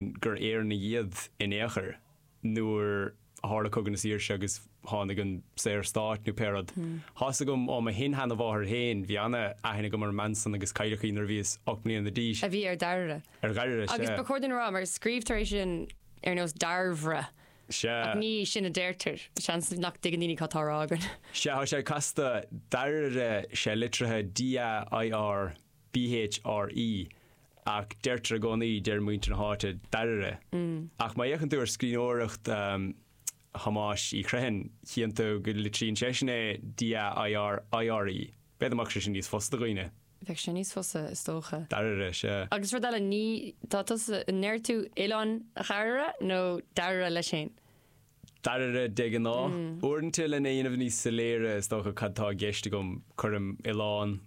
gur Éireannaigh iad in aon chor, nuair a tharla Cogadh na Saoirse agus tháinig an Saorstát, nó pé rud. Thá's agam ó mo shin-sheanamháthair féin, bhí an-aithne agam ar an mbean san agus cailleadh í nuair a bhíos ocht mbliana d'aois. a bhí ar Dhairbhre. Ar Dhairbhre, sea. Agus ba chóir duinn a rá, mar scríobhtar é sin ar nós Dairbhre, Sea. ach ní sin a deirtear. Seans nach dtuigeann daoine cad tá á rá againn. Sea, thá sé casta, Dairire, tá sé litrithe D-a-i-r. BHRE, ach deirtear i gcónaí, deir muintir na háite, dairire. Ach má fhéachann tú ar scríbhneoireacht Thomáis Uí Chriomhthain, chíonn tú go litríonn seisean é DAIRIRE. B'fhéidir mbeadh sé sin níos fusa do dhaoine. Bheadh sé níos fusa, is dócha. Dairire, sea. Agus rud eile, ní, tá tusa, an ndeir tú oileán dhairire nó dairire leis féin? dairire, de ghnáth. Uaireanta, lena dhéanamh níos soiléire, is dócha, cad tá i gceist agam, cuirim oileán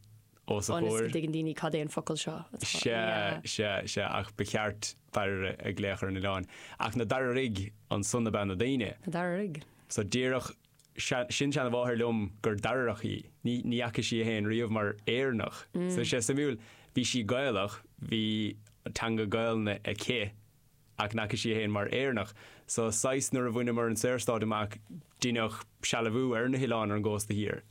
os a chomhair. Ionas go dtuigeann daoine cad é an focal seo atá. Sea, sea, sea, ach ba cheart dairire a ghlaoch ar an oileán. Ach na dairirigh, ansan ab ea na daoine? Na dairirigh. Sea, díreach. Sea, sin-seanamháthair liom gur dairireach í. Ní fhaca sí í fhéin riamh mar Éireannach. Sea, suimiúil. Bhí sí Gaelach, bhí teanga Gaelainne aici. Ach n'fhaca sí í féin mar Éireannach. So, saghas, nuair a bhaineamar an Saorstát amach, deineadh sealbhú ar na hoileáin ar an gcósta thiar.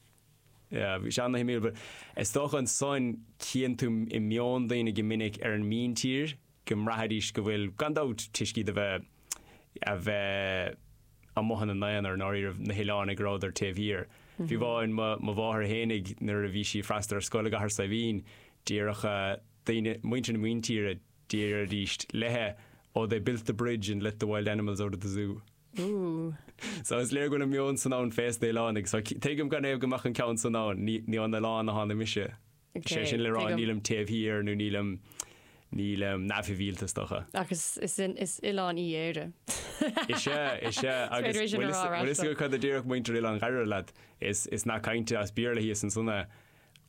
Yeah, bhí sé ana-shuimiúil. But is dócha ansan chíonn tú i meon daoine go minic ar an míntír go mbraithfidís go bhfuil, gan dabht, toisc iad a bheith, a bheith amuigh ina n-aonar, i ndáiríribh, na hoileánaigh go rabhadar taobh thiar. Fiú amháin, mo, mo mháthair fhéinig, nuair a bhí sí ag freastal ar scoil i gCathair Saidhbhín, déarfadh eh, daoine, muintir na míntíre, Déarfaidís léithe, Oh, they built the bridge and let the wild animals out of the zoo. Ooh. So, is léir go bhfuil an meon san ann fés na h-oileánaigh. So, tuigim canathaobh go mbeadh an ceann san ann. Ní, ní ón oileán a tháinig mise. Is é sin le rá, nílim taobh thiar nó nílim, nílim neamhshibhialta, is dócha. Ach is, is, is oileán í Éire. Is é, is é. Agus bhfuil a fhios, bhfuil a fhios agat cad a déarfadh muintir oileán Dhairire leat. Is, is nath cainte as Béarla thíos ansan é.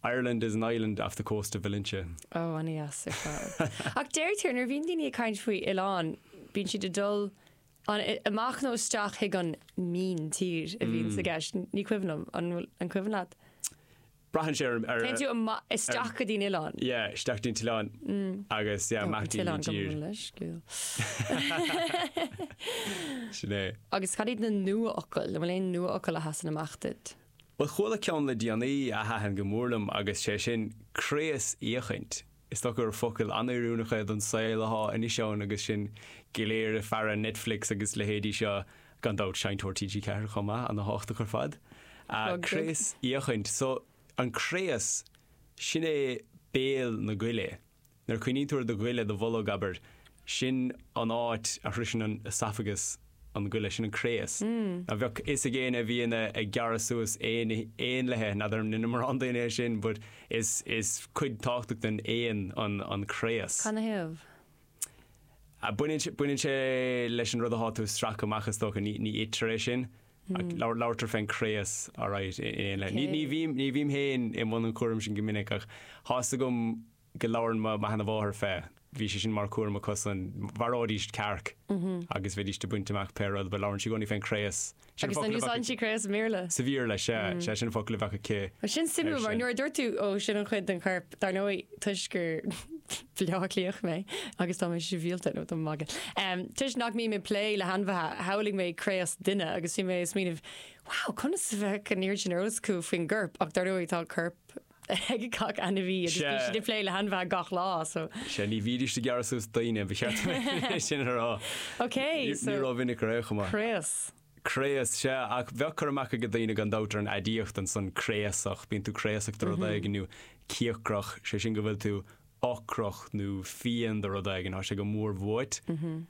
Ireland is an island off the coast of Valentia. Ó, ana-dheas ar fad. Ach deirtear, nuair a bhíonn daoine ag caint faoi oileán, bíonn siad ag dul an, amach nó isteach chuig an míntír a bhíonns i mm. gceist. Ní cuimhin liom, an bhfuil an cuimhin leat? Braitheann sé ar Téann tú ama- isteach go dtí'n oileán. Yeah, isteach dtí'n t-oileán mm. agus yeah, amach dtí'n t-oileán go tír. bhfuil leis, gúil. Sin é. Agus cad iad na nua-fhocail? An bhfuil aon nua-fhocail a sheasann amach duit? Bhuel, chuala ceann le déanaí a thaitin go mór liom agus sé sin craos-fhéachaint. Is dócha gur focal an-oiriúnach é don saol athá anois ann agus sinn go léir ag faire Netflix agus leithéidí seo, gan dabht seinnteoir TG4 chomh maith, ana thábhachtach ar fad. Craos-fhéachaint, so, an craos, sin é béal na goile. Nuair a chuimhníonn tú ar do ghoile, do bholg, abair, sin an áit a shroiseann an oesafagas an goile, sin an craos. Now bheadh fhios ag éinne a bhíonn ag gearradh suas aon éanlaithe, now ní dheineann mórán daoine é sin but is is cuid tábhachtach den éan an an craos. Canathaobh? Baineann sé baineann sé leis an rud athá tú a stracadh amach is dócha, ní ní itear é sin. Labhartar fén gcraos, alright, in éanlaithe. Ní bhím, ní bhím féin i mbun an chúraim sin go minic ach thá's agam go labhrann mo sheana-mháthair fé, bhí sé sin mar chúram acusan, mharaídís cearc agus bheidís ag baint amach pé rud, but labhrann sí i gcónaí fén gcraos. Agus an úsáideann sí craos sa Bhéarla? Sa Bhéarla, sea, sea sin an focal a bheadh aici ar sin. Sin suimiúil mar nuair a dúirt tú, ó sin an chuid den chorp, dar ndóigh toisc gur, Bleá Cliath mé agus tá mé sibhialta, níl mé ach ag magadh um, toisc nach mbím ag plé le hainmhithe, shamhlaigh mé craos duine agus bhí mé ag smaoineamh, wow, conas a bheadh an oiread sin eolas acu faoin gcorp, ach dar ndóigh tá corp ag gach ainmhí agus bhí siad ag plé le hainmhithe gach lá, so. Sea, ní bhídís ag gearradh suas daoine, ba cheart dom é sin a rá. Ok, so. Ní rómhinic ar aon chaoi. Craos. Craos, sea. Ach bheadh cur amach ag daoine gan dabht ar an aidiacht ansan, craosach. Bíonn tú craosach de rud éigin, nó cíocrach, sé sin go bhfuil tú ocrach nó fiain do rud éigin, tá sé go mór uait.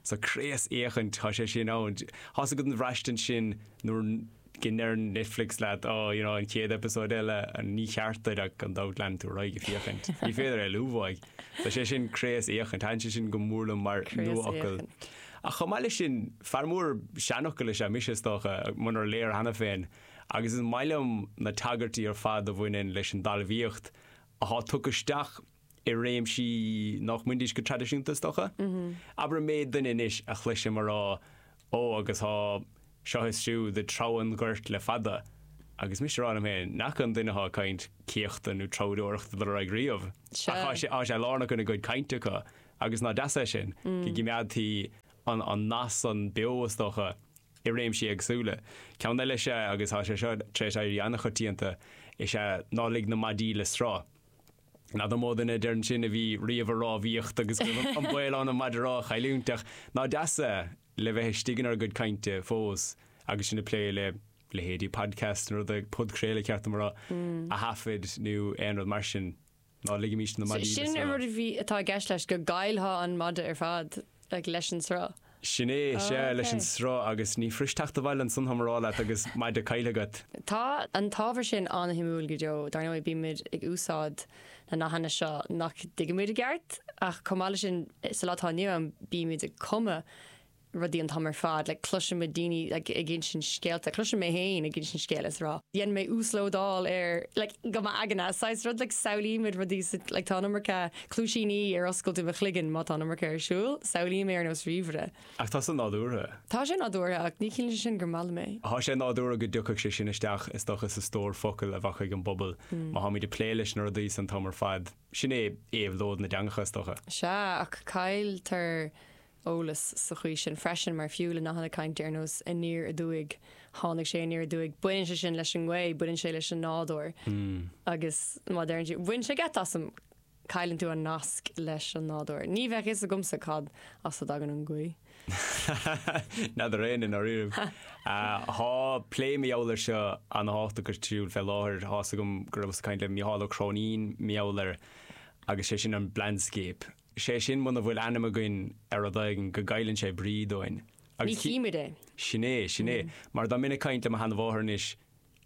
So craosfhéachaint, tá sé sin ann. Thá's agat an bhraistint sin nuair go ndeir Netflix leat, oh, you know, an chéad eipeasóid eile, níor cheart duit ach gan dabht leanann tú ar aghaidh ag féachaint. Ní féidir éalú uaidh. So sé sin craosfhéachaint, thaitin sé sin go mór liom mar nuafhocal. Ach chomh maith leis sin, fear mór seanfhocal is ea mise, is dócha, munar léir cheana féin, agus is maith liom na tagairtí ar fad a bhaineann leis an dtalmhaíocht atá tugtha isteach i réimsí nach mbaindís go traidisiúnta, is dócha. Abair an méid duine anois a chloisim a rá, Ó, agus tá seo is siúd ag treabhadh an ghoirt le fada, agus mise a rá liom féin, n'fheadar an duine atá ag caint céachtadh nó treabhdóireachta dul ar aghaidh riamh, ach tá sé lárnach ina gcuid cainte acu. Agus ná deas é sin? Go gcimeádtaí an nath san beo, is dócha, i réimsí éagsúla. Ceann eile is ea, agus tá sé seo tar éis éirí an-choitianta, is ea ná lig na maidí le sruth. N'fheadar mó duine a deireann sin a bhí riamh ag rámhaíocht agus go raibh an baol ann an maide rámha a chailliúint, ach ná deas é, le bheith istigh inár gcuid cainte fós agus sinn ag plé le leithéidí podcasts nó rudaí, podchraoladh ceart dom a rá, a thaifead nó aon rud mar sin. Ná ligimís na maidí le sruth. Sin an rud atá i gceist leis, go gcaillfeá an maide ar fad leis an sruth. Sin é, sea, leis an sruth, agus ní fuirist teacht abhaile ansan, táim á rá leat, agus maide caillthe agat. Tá an t-ábhar sin an-shuimiúil go deo. Dar ndóigh, bímid ag úsáid na nathanna seo nach dtuigimid i gceart, ach chomh maith leis sin, sa lá atá inniu ann, bímid ag cumadh, rudaí an t-am ar fad, like cloisimid daoine like ag insint scéalta, cloisim mé féin ag insint scéil is ag rá, déanann mé uaslódáil ar like go m'aigne, saghas rud like samhlaímid rudaí sa like tá an iomarca cluaisíní ar oscailt i mo chloigeann má tá an iomarca ar siúl, samhlaím é ar nós ríomhaire. Ach tá sé nádúrtha. Tá sé nádúrtha ach ní chiallaíonn sé sin gur maith liom é. Tá sé nádúrtha go dtiocfadh sé sin isteach is dócha sa stór focal a bheadh ag an bpobal má táimid ag plé leis na rudaí san an t-am ar fad, sin é éabhlóid na dteangacha is dócha. Sea, ach cailltear eolas sa chaoi sin freisin, mar fiú le nathanna cainte ar nós aniar aduaidh, tháinig sé aniar aduaidh, baineann sé sin leis an ngaoth, baineann sé leis an nádúr, agus má deireann tú, bhain sé geit asam, cailleann tú an nasc leis an nádúr. Ní bheadh fhios agamsa cad as a dtagann an gaoth. Ní fheadar éinne, i ndáiríribh. Tá plé mar gheall air seo an-thábhachtach ar siúl fé láthair. Tá fhios agam go rabhas ag caint le Mícheál Ó Cróinín mar gheall air agus sé sin an 'blindscape'. Is é sin muna bhfuil ainm againn ar rud éigin, go gcailleann sé brí dúinn. Ní chímid é. Sin é, sin é. Mar dá mbeinn ag caint le mo sheanamháthair anois,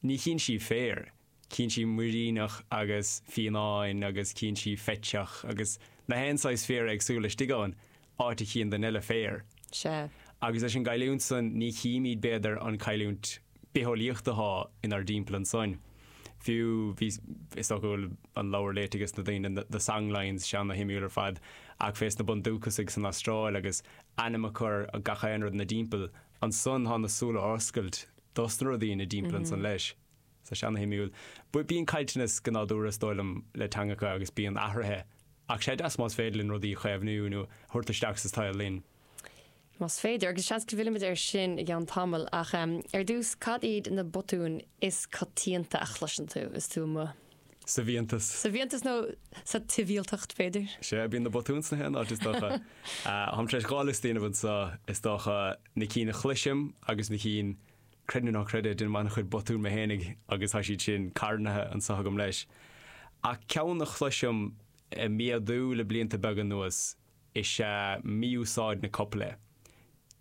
ní chíonn sí féar, cíonn sí muiríneach agus fionnán agus cíonn sí feiteach agus gach aon saghas féar éagsúla istigh ann, áit a chíonn duine eile féar. Sea. Agus leis an gcailliúint san, ní chímid, b'fhéidir, an cailliúint bitheolaíocht athá inár dtimpeall ansoin. Fiú, bhí, is dócha go bhfuil an leabhar léite ag a lán daoine, na songlines, sé ana-shuimiúil ar fad, ach fés na bundúchasaigh san Astráil agus ainm a chur ar gach aon rud ina dtimpeall ansan thá na súile ar oscailt dos na rudaí ina dtimpeall ansan leis. So, sé ana-shuimiúil. But bíonn caillteanas go nádúrtha, is dóigh liom, le teangacha agus bíonn athruithe ach sé deas más féidir linn rudaí a chaomhnú nó a thabhairt isteach sa tsaol linn. Más féidir, agus seans go bhfillfimid air sin i gceann tamaill, ach ar dtús, cad iad na botúin is coitianta a chloiseann tú is tú amuigh? Sa bhfiántas. Sa bhfiántas nó sa tsibhialtacht, b'fhéidir? Sea, bíonn na botúin sna haon áit, is dócha. Táim tar éis dhá liosta a dhéanamh anseo, is dócha, na cinn a chloisim agus na cinn, creid nó ná creid é, déanaim an-chuid botún mé fhéinig agus tá siad sin carnaithe anseo agam leis. Ach ceann a chloisim ag méadú le blianta beaga anuas is ea mí-úsáid na copaile.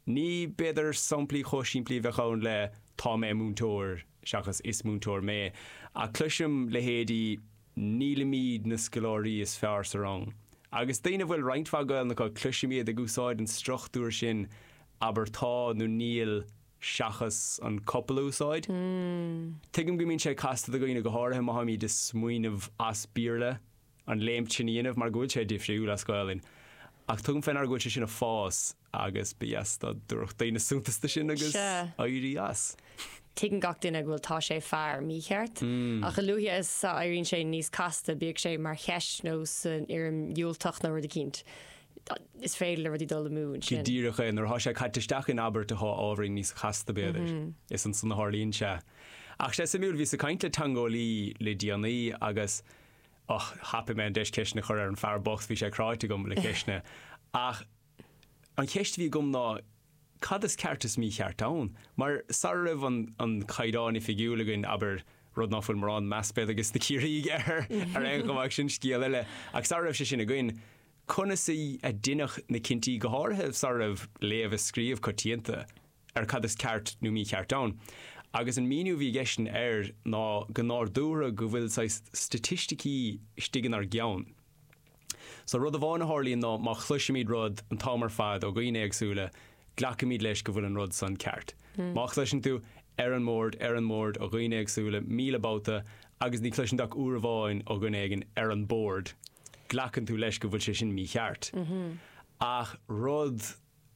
Ní, b'fhéidir, samplaí chomh simplí a bheadh ann le Tá mé múinteoir seachas Is múinteoir mé, ach cloisim leithéidí Nílimid na scoláirí is fearr sa rang. Agus daoine a bhfuil roinnt mhaith Gaolainn acu, cloisim iad ag úsáid an struchtúir sin Abair Tá nó Níl seachas an copail a úsáid. Tuigim go mbíonn sé casta do dhaoine, go háirithe má táimid ag smaoineamh as Béarla. an léimt sin a dhéanamh mar go bhfuil sé difriúil as Gaolainn ach tugaim fé ndeara go bhfuil sé sin ag fás agus ba dheas dá dtabharfadh daoine suntas do sin agus éirí as. Tuigeann gach duine go bhfuil tá sé fear mícheart ach a luaithe is a éiríonn sé níos casta, bíodh sé mar cheist nó san fhoirm dhiúltach nó rud eicínt, is féidir le rudaí dul amú ansin. Go díreach é, nuair atá sé caite isteach in abairt atá ábhairín níos casta b'fhéidir, is ansan a tharlaíonn sé. Ach tá sé suimiúil, bhíos ag caint le teangeolaí le déanaí agus Ach thapaigh mé an deis ceisteanna a chur ar an bhfear bocht, bhí sé cráite agam le ceisteanna. Ach an cheist a bhí agam ná, cad is ceart is mícheart ann? Mar sara raibh an an Caighdeán Oifigiúil againn, abair, rud ná fuil mórán meas b'fhéidir ages na Ciarraígh air ar aon chuma ach sin scéal eile, ach sara raibh sé sin againn, conas a a deineadh na cinntí, go háirithe sara raibh léamh is scríobh coitianta? ar cad is ceart nó mícheart ann. Agus an míniú a bhí aigesean air ná go, ar ndóigh, go bhfuil saghas staitisticí istigh inár gceann. So rud amháin a tharlaíonn ná má chloisimid rud an t-am ar fad ó dhaoine éagsúla, glacaimid leis go bhfuil an rud san ceart. Má chloiseann tú Ar an mbord, ar an mbord ó dhaoine éagsúla míle babhta agus ní chloiseann tú ach uair amháin ó dhuine éigin Ar an bord, glacann tú leis go bhfuil sé sin mícheart. Ach rud.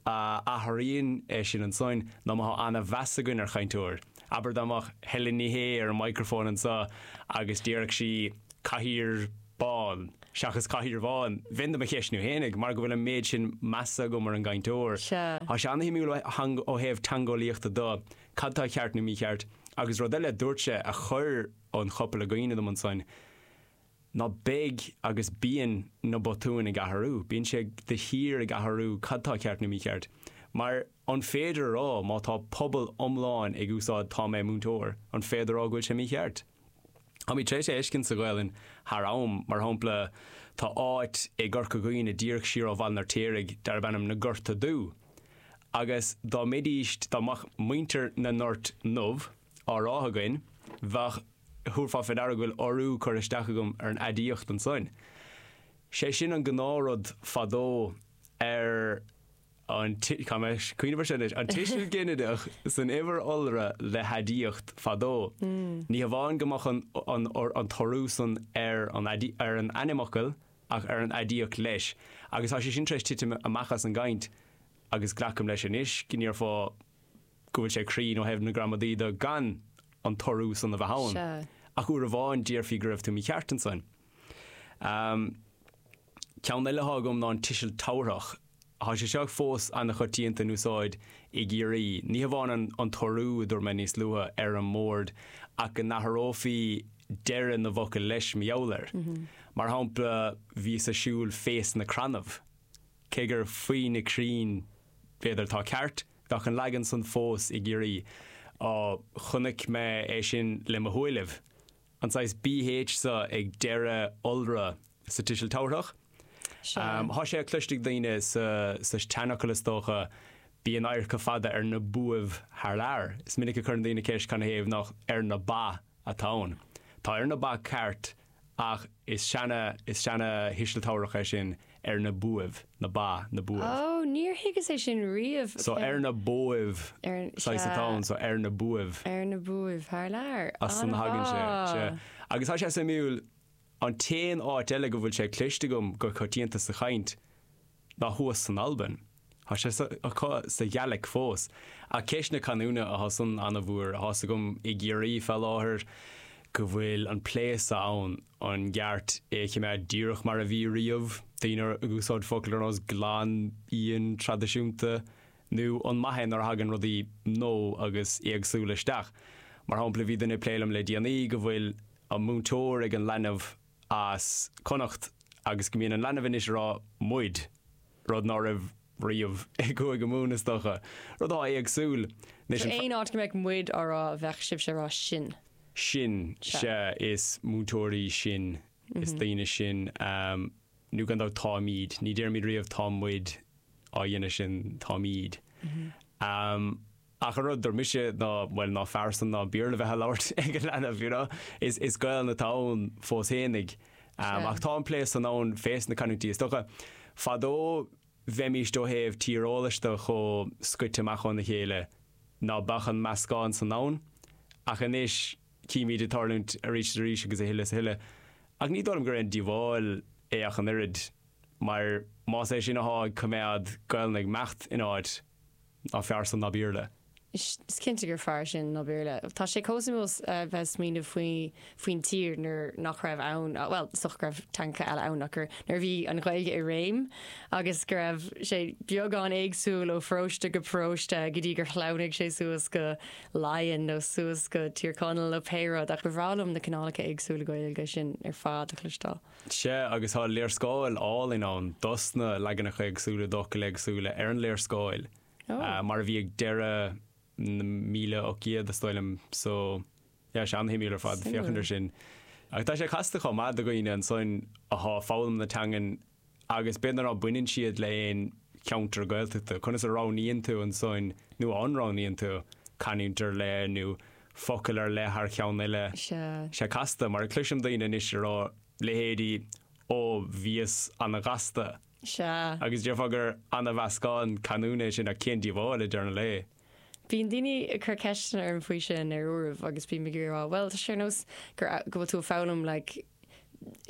a athraíonn é sin ansoin ná má thá ana-mheas againn ar chainteoir. Abair dá mbeadh Helen Ní Shé ar an microphone anso agus déarfadh sí Cathaoir bán seachas Cathaoir bhán, bheinn do mo cheistniú fhéinig mar go bhfuil an méid sin measa agam ar an gcainteoir. Thá sé ana-shuimiúil ó thaobh teangeolaíochta de, cad tá ceart nó mícheart. Agus rud eile a dúirt sé a chuir an chopail i gcuimhne dom ansoin, ná beidh agus bíonn na botúin ag athrú, bíonn sé de shíor ag athrú cad tá ceart nó mícheart. Mar, an féidir a rá má tá pobal iomlán ag úsáid Tá mé múinteoir, an féidir a rá go bhfuil sé mícheart? Táimid tar éis é a fheiscint sa Ghaelainn thar am. Mar shampla, tá áit i gCorca Dhuibhne díreach siar ó Bhaile an Fheirtéaraigh darb ainm Na Gorta Dubha. Agus dá mbeidís, dá mbeadh muintir na nGort nDubh, á rá againn, bheadh, thabharfá faoi deara go bhfuil urú curtha isteach agam ar an aidiacht ansoin. Sé sin an gnáthrud fadó ar an, caithfidh mé cuimhneamh air seo anois, an tuiseal ginideach san uimhir iolra le haidiacht fadó. Ní hamháin go mbeadh an, an t-urú san ar an, ar an ainmfhocal ach ar an aidiacht leis. Agus tá sé sin tar éis titim amach as an gcaint agus glacam leis anois go ndéarfá, go bhfuil sé cruinn ó thaobh na gramadaí de gan an t-urú san a bheith ann. Sea. Ach uair amháin déarfaí go raibh tú mícheart ansan. Ahm, ceann eile athá agam ná an tuiseal tabharthach. Thá sé seo fós an-choitianta in úsáid i gCiarraí. Ní hamháin an an t-urú, a dúirt mé níos luaithe, ar an mbord, ach go n-athrófaí deireadh na bhfocal leis mar gheall air. Mar shampla, bhíos a' siúl fé sna crannaibh, cé gur faoi na crainn b'fhéidir atá ceart, bheadh an leagan san fós i gCiarraí. Á, chonaic mé é sin le mo shúilibh, an saghas bh so ag deireadh iolra sa tuiseal tabharthach. Sea. Thá sé cloiste ag daoine sa tseanfhocal is dócha, Bíonn adharca fada ar na buaibh thar lear. Is minic a chuireann daoine ceist canathaobh nach ar na ba atá ann. Tá ar na ba ceart Ach is seana, is seana thuiseal tabharthach é sin, ar na buaibh, na ba, na Ó, buaibh. níor thuigeas é sin riamh. So, ar na buaibh, Ar, saghas sea. atá ann, so, ar na buaibh. Ar na buaibh, thar lear. As san a thagann sé, sea. An-mhaith! Agus tá sé suimiúil, an t-aon áit eile go bhfuil sé cloiste agam go coitianta sa chaint, ná thuas san Albain. Thá sé acu sa Ghaeilic fós. Ach ceist na canúna a, thá san an-mhór. Thá's agam i gCiarraí fá láthair go bhfuil an plé so ann, an gceart é a chimeád díreach mar a bhí riamh, daoine ag úsáid focail ar nós 'glan íon traidisiúnta', nú an maith é nuair a thagann rudaí nua agus éagsúla isteach? Mar shampla, bhí duine ag plé liom le déanaí go bhfuil an múinteoir ag an leanbh, as Connacht agus go mbíonn an leanbh anois ag rá 'muid', rud ná raibh riamh i gCúige Mumhan is dócha. Rud atá éagsúil. Anois an. Aon áit go mbeadh 'muid' á rá bheadh sibhse ag rá 'sinn'. sinn, sea, is múinteoirí sinn, is daoine sinn, nó gan dabht táimíd, ní déarfaimís riamh 'tá muid' á dhéanamh sin, táimíd. Ach an rud a dúirt mise ná, bhuel, nach fearr san ná Béarla bheith á labhairt ag an leanbh, you know? Is is Gaolainn atá ann fós féin, ag? Ach tá an plé san ann fé sna canúintí is dócha. Fadó bheimíst ó thaobh tíreolais de chomh scoite amach óna chéile ná beadh an meascán san ann. Ach anois címíd é ag tarlúint arís is arís agus a thuilleadh is a thuilleadh. Ach ní dóigh liom gur aon díobháil é ach an oiread, mar más é sin athá ag coimeád Gaolainn ag imeacht in áit, Nach fearr san ná Béarla. Is cinnte gur fearr sin ná Béarla. Tá sé chomh suimiúil bheith ag smaoineamh faoin tír nuair nach raibh ann, bhuel, is dócha go raibh teangacha eile ann, ach nuair a bhí an Ghaeilge i réim agus go raibh sé beagán éagsúil ó pharóiste go paróiste go dtí gur shleamhnaigh sé suas go Laighean nó suas go Tír Chonaill nó pé rud, ach ba bhreá liom na cineálacha éagsúla Gaeilge sin ar fad a chloisteáil. Sea, agus tá léarscáil álainn ann dosna leaganacha éagsúla d'fhocail éagsúla ar an léarscáil, mar a bhí ag deireadh na míle ocht gcéad, is dóigh liom. So, yeah, is é an-shuimiúil ar fad féachaint ar sin. Ach tá sé casta chomh maith do dhaoine ansoin athá foghlaim na teangan agus b'fhéidir ná baineann siad le aon cheantar Gaeltachta, conas a roghnaíonn tú ansoin, nó an roghnaíonn tú, canúint ar leith nó focal ar leith thar cheann eile. Is é casta, mar a chloisim daoine anois ag rá, leithéidí Ó, bhíos an-ghasta. Agus déarfá gur an-mheascán canúna é sin, ach cén díobháil, i ndeireadh an lae? Bíonn daoine ag cur ceisteanna orm faoi sin ar uairibh agus bím ag iarraidh a rá, bhuel, tá sé ar nós gur, go bhfuil tú ag foghlaim like,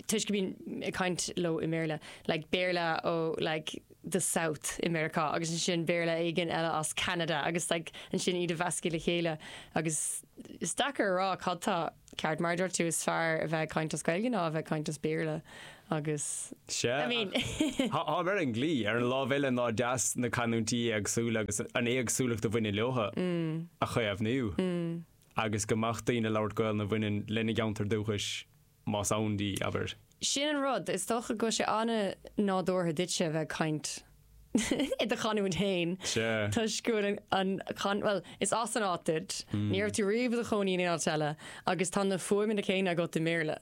toisc go mbíonn ag caint leo i mBéarla, like Béarla ó like the South i Meiriceá agus ansin Béarla éigin eile as Ceanada agus like ansin iad a mheascadh le chéile agus is deacair a rá cad tá ceart mar a dúirt tú is fearr a bheith ag caint as Gaeilge ná a bheith ag caint as Béarla agus I mean Tá mar an glí ar an lámh eile nach deas na canúintí éagsúla agus an éagsúlacht a bhaineann leotha mm. a chaomhnú. Mm. agus go mbeadh daoine ag labhairt Gaolainn a bhaineann lena gceantar dúchais, más ann di, abair. Sin an rud, is dócha go bhfuil sé an-nádúrtha duitse a bheith ag caint i do chanúint fhéin, toisc go bhfuil an, bhuel, is as an áit duit, ní raibh tú riamh i do chónaí in aon áit eile, agus tá na fuaimeanna céanna agat i mBéarla.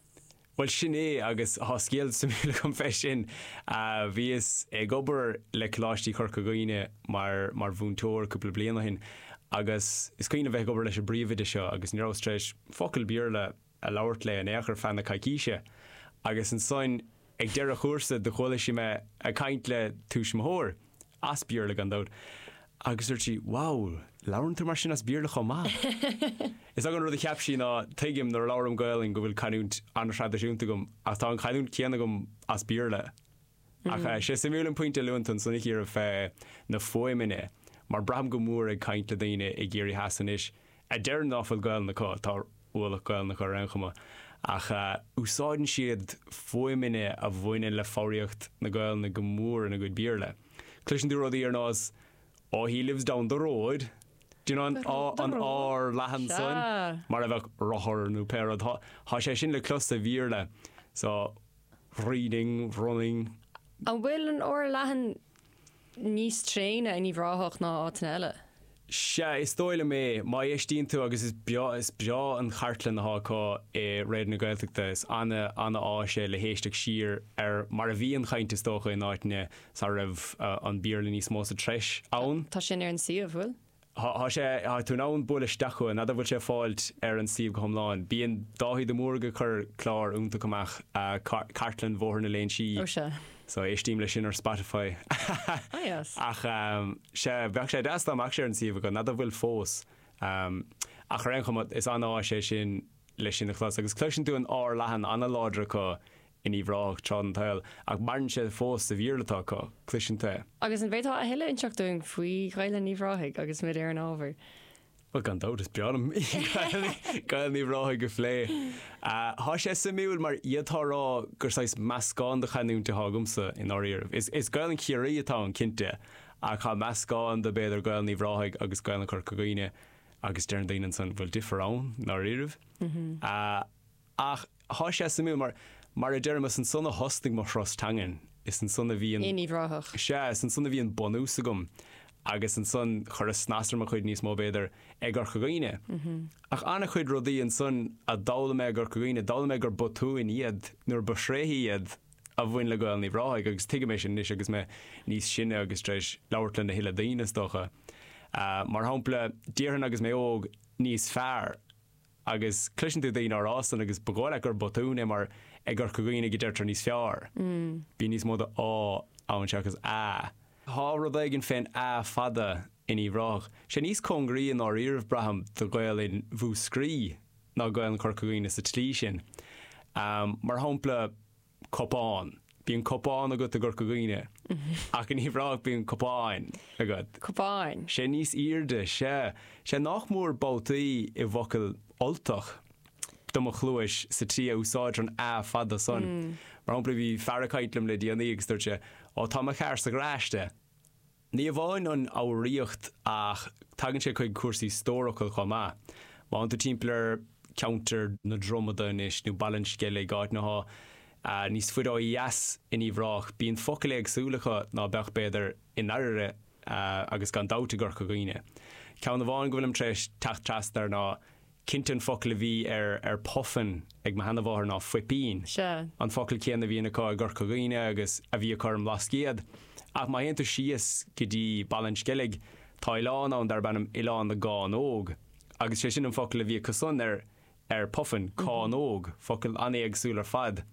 Bhuel, sin é, agus tá scéal suimiúil agam fé sin. Bhíos ag obair le Coláistí Chorca Dhuibhne mar mar mhúinteoir cúpla bliain ó shin, agus is cuimhin liom bheith ag obair leis an bpríomhoide seo, agus ní rabhas tar éis focal Béarla a labhairt léi in aon chor feadh na coicíse, agus ansoin ag deireadh an chúrsa do chuala sí mé ag caint le tuismitheoir, as Béarla gan dabht, agus dúirt sí, Wow, labhrann tú mar sin as Béarla chomh maith? Is dócha an rud a cheap sí ná, tuigim nuair a labhraim Gaolainn go bhfuil canúint an-thraidisiúnta agam, ach tá an chanúint chéanna agam as Béarla. Ach eh, sé suimiúil an pointe a luann tú ansan, a Chiara, fé na fuaimeanna, mar braithim go mór ag caint le daoine i gCiarraí Theas anois, a deireann ná fuil Gaolainn acu, tá ualach Gaolainne acu ar aon chuma ach úsáideann siad fuaimeanna a bhaineann le foghraíocht na Gaolainne go mór ina gcuid Béarla. Cloiseann tú rudaí ar nós Oh he lives down the road do you know an, an r leathan san mar a bheadh rothar nó pé rud Tá sé sin le clos sa Bhéarla so reading, running. An bhfuil an r leathan níos tréine in Uíbh Ráthach ná áiteanna eile? Sea, is dóigh liom é. Má éistíonn tú, agus is breá, is breá an chartlann atá acu i Raidió na Gaeltachta. Is ana, ana áis é le héisteacht siar ar mar a bhí an chaint is dócha in áiteanna sara raibh an Béarla níos mó sa treis ann. Tá sin ar an suíomh, bhfuil? Tá sé, tá tú in ann bualadh isteach chugainn, n'fheadar bhfuil sé fáilt ar an suíomh go hiomlán. Bíonn Dáithí de Mórdha ag cur clár iontach amach, Cartlann Bhóthar na Léinsí. Ó sea. So éistím leis sin ar Spotify. Ah yes. Ach sea, bheadh sé deas dá mbeadh sé ar an suíomh acu, n'fheadar bhfuil fós. Ach ar aon chuma, is an-áis é sin leis sin a chlos. Agus cloiseann tú an r leathan an-láidir acu in Uíbh Ráthach tráth den tsaol, ach maireann sé fós sa Bhéarla atá acu, cloiseann tú é. Agus an bhféadfá a thuilleadh inseacht dúinn faoi Ghaelainn Uíbh Ráthaigh agus muid ar an ábhar? Bhuel, gan dabht, is breá liom Gaelainn Uíbh Ráthaigh a phlé. Tá sé suimiúil, mar d'fhéadfá a rá gur saghas meascán de chanúint atá agamsa, i ndáiríribh. Is Gaelainn Chiarraí atá ann, cinnte, ach tá meascán de, b'fhéidir, Gaelainn Uíbh Ráthaigh agus Gaelainn Chorca Dhuibhne, agus deireann daoine ansan, bhfuil difear ann, i ndáiríribh? Ach tá sé suimiúil mar, mar a deirim, is ansan a thosnaigh mo thuras teangan. Is ansan a bhí an. Uíbh Ráthach. Sea, is ansan a bhí an bunús agam agus ansan chuireas snas ar mo chuid níos mó, b'fhéidir, i gCorca Dhuibhne. Ach an-chuid rudaí ansan a d'fhoghlaim mé i gCorca Dhuibhne, d'fhoghlaim mé gur botúin iad nuair ba thréithe iad a bhain le Gaelainn Uíbh Ráthaigh agus tuigim é sin anois agus mé níos sine agus tar éis labhairt lena thuilleadh daoine, is dócha. Mar shampla, déarfainn agus mé óg, níos fearr. Agus cloiseann tú daoine ag rá san, agus ba dhóigh leat gur botún é, mar i gCorca Dhuibhne go deirtear níos fearr. Bíonn níos mó de á ann seachas a. Tá rud éigin fén a fada in Uíbh Ráthach. Sé níos cóngaraí i ndáiríribh, braithim, do Ghaelainn Mhúscraí ná Gaelainn Chorca Dhuibhne sa tslí sin. Mar shompla. cupán. Bíonn cupán agat i gCorca Dhuibhne, ach in Uíbh Ráthach bíonn cupán agat. cupán. sé níos airde, sea. sé nach mór babhtaí i bhfocail Ultach, do mo chluais, sa tslí a úsáidtear an a fada san. Mar shampla, bhí fear ag caint liom le déanaí agus dúirt sé, Ó, tá mo charr sa gharáiste. Ní amháin an fhoghraíocht ach tagann sé chuig cúrsaí stórfhocal chomh maith. Má fhanann tú timpeall ar cheantar na Dromoda anois, nó Baile an Sceilg, áiteanna atá níos faide ó dheas in Uíbh Ráthach, bíonn focail éagsúla acu ná beadh, b'fhéidir, i nDairbhre agus gan dabht i gCorca Dhuibhne. Ceann amháin go bhfuilim tar éis teacht trasna air ná Cinnte an focal a bhí ar ar puffin ag mo sheanamháthair ná fuipín, Sea. an focal céanna a bhíonn acu i gCorca Dhuibhne agus a bhí acu ar an mBlascaod. Ach má théann tú síos go dtí Baile an Sceilg, tá oileán ann darb ainm Oileán na gCánóg, agus sé sin an focal a bhí acu san ar ar puffin, cánóg, focal an-éagsúil ar fad.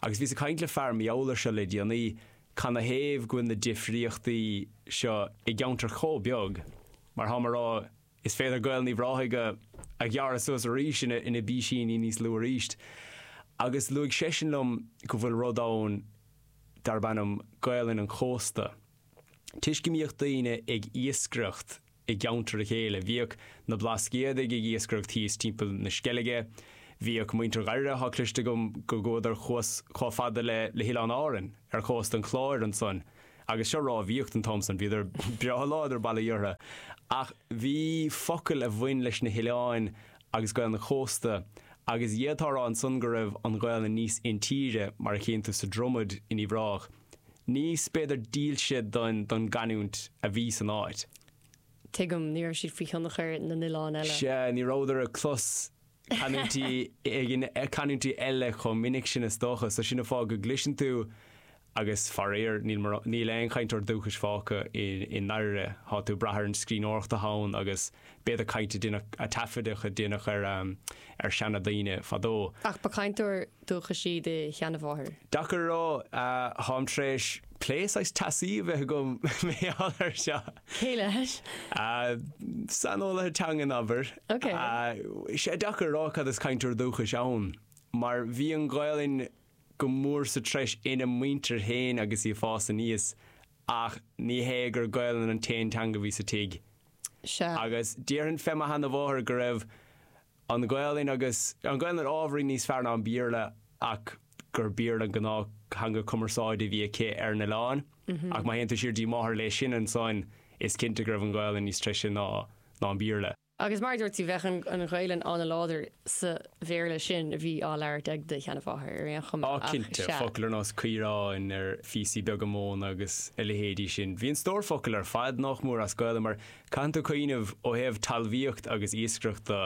Agus bhíos ag caint le fear mar gheall air seo le déanaí, canathaobh go bhfuil na difríochtaí seo i gceantar chomh beag mar tháim a rá Is féidir Gaelainn Uíbh Ráthaigh a a ghearradh suas arís ina ina bpísíní níos lú arís. Agus luaigh seisean liom go bhfuil rud ann darb ainm Gaelainn an Chósta. Toisc go mbíodh daoine ag iascaireacht i gceantar a chéile, bhíodh na Blascaodaigh ag iascaireacht thíos timpeall na Sceilge, bhíodh muintir Dhairbhre, tá cloiste agam go gcuadar thuas chomh fada le le hOileán Árainn, ar chósta an Chláir ansan. Agus seo rámhaíocht an t-am san, bhíodar breá láidir, bail ó Dhia orthu, ach bhí focail a bhain leis na hoileáin agus Gaelainn an chósta, agus d'fhéadfá a rá ansan go raibh an Ghaelainn níos intíre, mar a chíonn tú sa Dromaid in Uíbh Ráthach, níos, b'fhéidir, dílse don gcanúint a bhí san áit. Tuigim, ní raibh siad faoi thionchar na n-oileán eile. Sea, ní rabhadar ag clos. canúintí éigin, canúintí eile chomh minic sin is dócha, so sin an fáth go gcloiseann tú agus faraor níl mórán, níl aon chainteoir dúchais fágtha i i nDairbhre, tá tú ag brath ar an scríbhneoireacht atá ann agus b'fhéidir caint a deineadh, taifeadadh a deineadh ar ar seanadaoine fadó. Ach ba chainteoir dúchais í do sheanamháthair. Deacair a rá. Táim tar éis plé saghas teasaí a bheith agam mar gheall air seo. Cé leis? Saineolaithe teangan, abair. Ok. Sé deacair a rá cad is cainteoir dúchais ann, mar bhí an Ghaelainn go mór sa treis ina muintir féin agus í ag fás aníos, ach ní hé gur Gaelainn an t-aon teanga bhí sa tigh. Sea. Agus déarfainn fé mo sheanamháthair go raibh an Ghaelainn agus an Ghaelainn ábhairín níos fearr ná an Béarla ach gur Béarla an gnáth-theanga cumarsáide a bhí aici ar an oileán. Ach má théann tú siar dtí máthair léi sin ansan, is cinnte go raibh an Ghaelainn níos treise ná ná an Béarla. Agus mar a dúirt tú, bheadh an Ghaelainn an-láidir sa Bhéarla sin a bhí á labhairt ag do sheanamháthair ar aon chuma, Á ach cinnte, sea. focail ar nós caoráin, ar phíosaí beaga móna agus a leithéidí sin. Bhí an stór focal ar fad nách mór as Gaelainn mar Caitheann tú cuimhneamh, ó thaobh talmhaíocht agus iascaireacht do,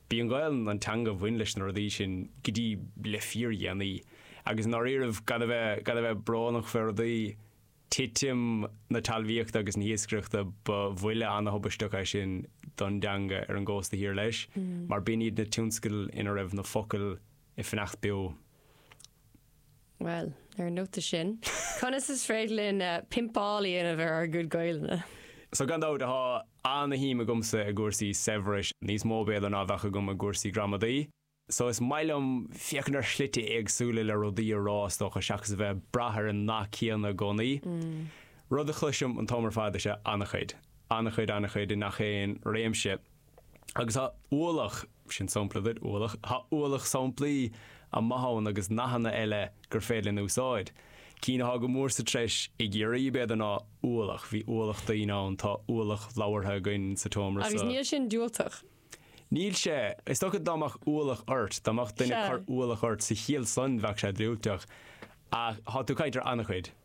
b'í an Ghaelainn an teanga a bhain leis na rudaí sin go dtí le fíordhéanaí. Agus i ndáiríribh, gan a bheith, gan a bheith brónach fé rudaí, titim na talmhaíochta agus na hiascaireachta ba bhuille ana-thubaisteach é sin don dteanga ar an gcósta thiar leis, mar b'in iad na tionscail ina raibh na focail ag fanacht beo. Bhuel, ar an nóta sin, conas is féidir linn pimpeáil a dhéanamh ar ár gcuid Gaelainne? So, gan dabht, tá ana-shuim agamsa i gcúrsaí saibhris, níos mó b'fhéidir ná a bheadh agam i gcúrsaí gramadaí. So, is maith liom féachaint ar shlite éagsúla le rudaí a rá, is dócha, seachas a bheith ag brath ar an nath céanna i gcónaí. Rud a chloisim an t-am ar fad is ea ana-chuid, ana-chuid, ana-chuid i ngach aon réimse. Agus tá ualach, sin sampla duit, ualach, tá ualach samplaí maithe ann agus nathanna eile gur féidir linn a úsáid. Cinn atá go mór sa treis i gCiarraí, b'fhéidir, ná ualach, bhí ualach daoine ann, tá ualach leabhartha againn sa tseomra Agus seo. níl sin diúltach. Níl sé. Is dócha dá mbeadh ualach ort, dá mbeadh duine ag Sea. cur ualach ort sa chiall san, bheadh sé diúltach. Ach tá tú ag caint ar an-chuid.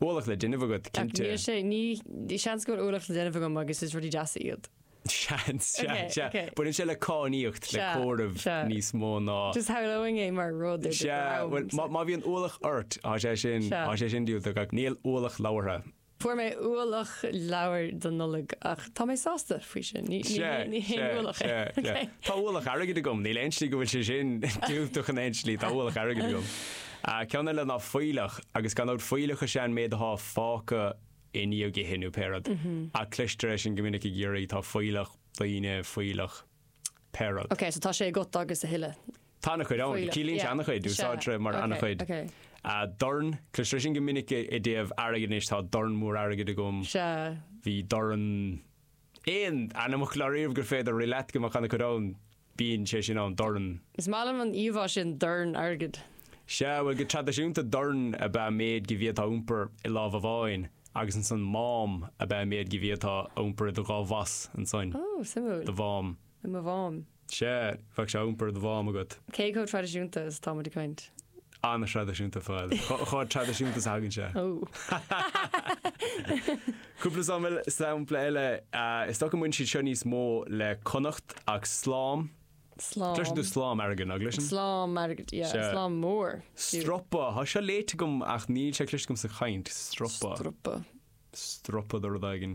Ualach le déanamh agat, cinnte. Níl sé, ní, seans go bhfuil ualach le déanamh agam agus is rudaí deasa iad. Seans, sea, Ok, sea. ok. Baineann sé le cáiníocht, le Sea, comhaireamh sea. níos mó ná. Just shamhlóinn é mar rud ar do Sea, dhrom. bhuel, má, má bhíonn ualach ort, tá sé sin, Sea. tá sé sin diúltach, ach níl ualach leabhartha. Fuair mé ualach leabhar don Nollaig, ach tá mé sásta faoi sin, ní, ní, Sea, haon- ní haon sea, ualach é. sea, sea. Ok. Tá ualach airgid agam, níl aon slí go bhfuil sé sin diúltach in aon slí, tá ualach airgid agam. An ceann eile ná fuílleach, agus gan dabht fuílleach is ea an méid atá fágtha i ndiaidh ithe nó pé rud, ach cloistear é sin go minic i gCiarraí tá fuílleach, daoine, fuílleach, pé rud. Ok, so tá sé agat agus a thuilleadh. Tá an-chuid ann, fuílleach, ciallaíonn sé yeah, an-chuid, is ea, úsáidtear é mar ok, an-chuid. ok. Ah, dorn, cloistear é sin go minic i dtaobh airgid anois, tá dorn mór airgid agam, Is ea. bhí dorn. aon ainmfhocal riamh gur féidir rith leat go mbeadh an-chuid ann, bíonn sé sin ann, dorn. Is maith liom an íomhá sin, dorn airgid. Sea, bhuel, go traidisiúnta, dorn ab ea an méid go bhféadfá a iompar i lámh amháin, agus ansan mám ab ea an méid go bhféadfá a iompar i do dhá bhas, ansan. Ó, suimiúil. Do mhám. I mo mhám. Sea, bheadh sé á iompar i do mhám agat. Cé chomh traidisiúnta is atá muid ag caint? An-thraidisiúnta, a Phóil. Chomh traidisiúnta is a thagann sé. Cúpla samhail, sampla eile, is dócha go mbaineann siad seo níos mó le Connacht ach slám, cloiseann tú slám airgid, ná gcloiseann? Slám airgid, yeah, slám mór. Stropa, tá seo léite agam ach níl sé cloiste agam sa chaint, stropa. Stropa. Stropa de rud éigin.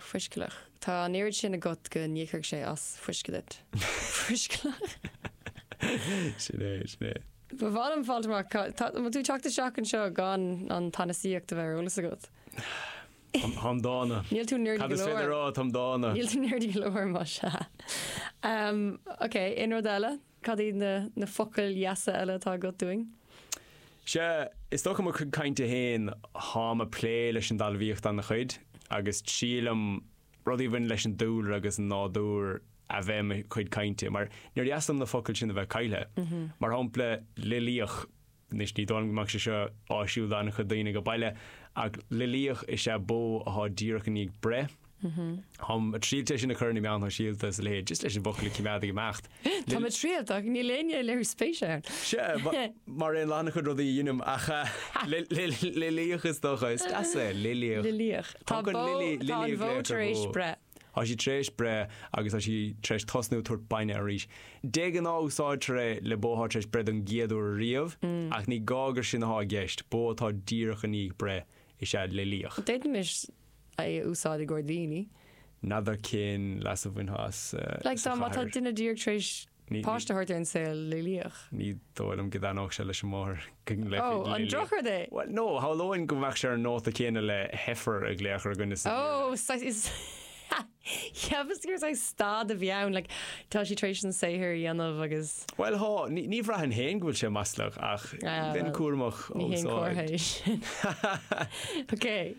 foiscealach. Tá an oiread sin agat go n-íocfadh sé as fuisce duit. Foiscealach. Sin é, sin é. Ba mhaith liom fáilt amach ca ta ma tú teacht isteach anseo gan an tsanasaíocht a bheith ar eolas agat. Táim táim dána. Níl tú nerdy Cad go is féidir leor. rá táim dána? Níl tú nerdy go leor, más ea. Em, okay, aon rud eile? Cad iad na focail dheasa eile atá agat dúinn? Sea, is dócha mo chuid cainte féin, táim ag plé leis an dtalmhaíocht ana-chuid, agus triailim rudaí a bhaineann leis an dúlra agus an nádúr a bheith i mo chuid cainte, mar níor dheas liom na focail sin a bheith caillthe. Mar shampla, loilíoch. Anois ní dóigh liom go mbeadh sé seo áisiúil do an-chuid daoine ag baile, ach loilíoch is ea bó athá díreach i ndiaidh breith. Táim ag triailt é sin a chur ar na meáin shóisialta is a leithéid, just leis an bhfocal a coimeád ag imeacht. Táim ag triailt ach níl éinne ag léiriú spéise ann. Sea, mar aon le an-chuid rudaí a dheinim, ach loilíoch is dócha. Is deas é, loilíoch. Loilíoch. Tá an bhó tar éis breith. Tá sí tar éis breith agus tá sí tar éis tosnú ag tabhairt bainne arís. De ghnáth úsáidtear é le bó atá tar éis breith don gcéad uair ariamh, ach ní gá gur sin atá i gceist, bó atá díreach i ndiaidh breith is ea loilíoch. D'fhéadfaimis é a úsáid i gcomhair daoine. N'fheadar cén leas a bhainfeá as sa chathair. Má tá duine díreach tar éis. páiste a thabhairt ar an saol loilíoch. Ní dóigh liom go dtaitneodh sé leis an máthair go nglaofaí loilíoch. Oh, an drochrud é? Bhuel, no, shamhlóinn go mbeadh sé ar an nóta céanna le heifer a ghlaoch ar dhuine sa Bhéarla. Oh, saghas, is, cheapas gur saghas stad a bhí ann, like, tá sí tar éis an saothar a dhéanamh agus. Bhuel, há, ní bhraithfinn féin go bhfuil sé maslach ach bheinn cúramach á úsáid. Ní haon comhartha é sin. Okay.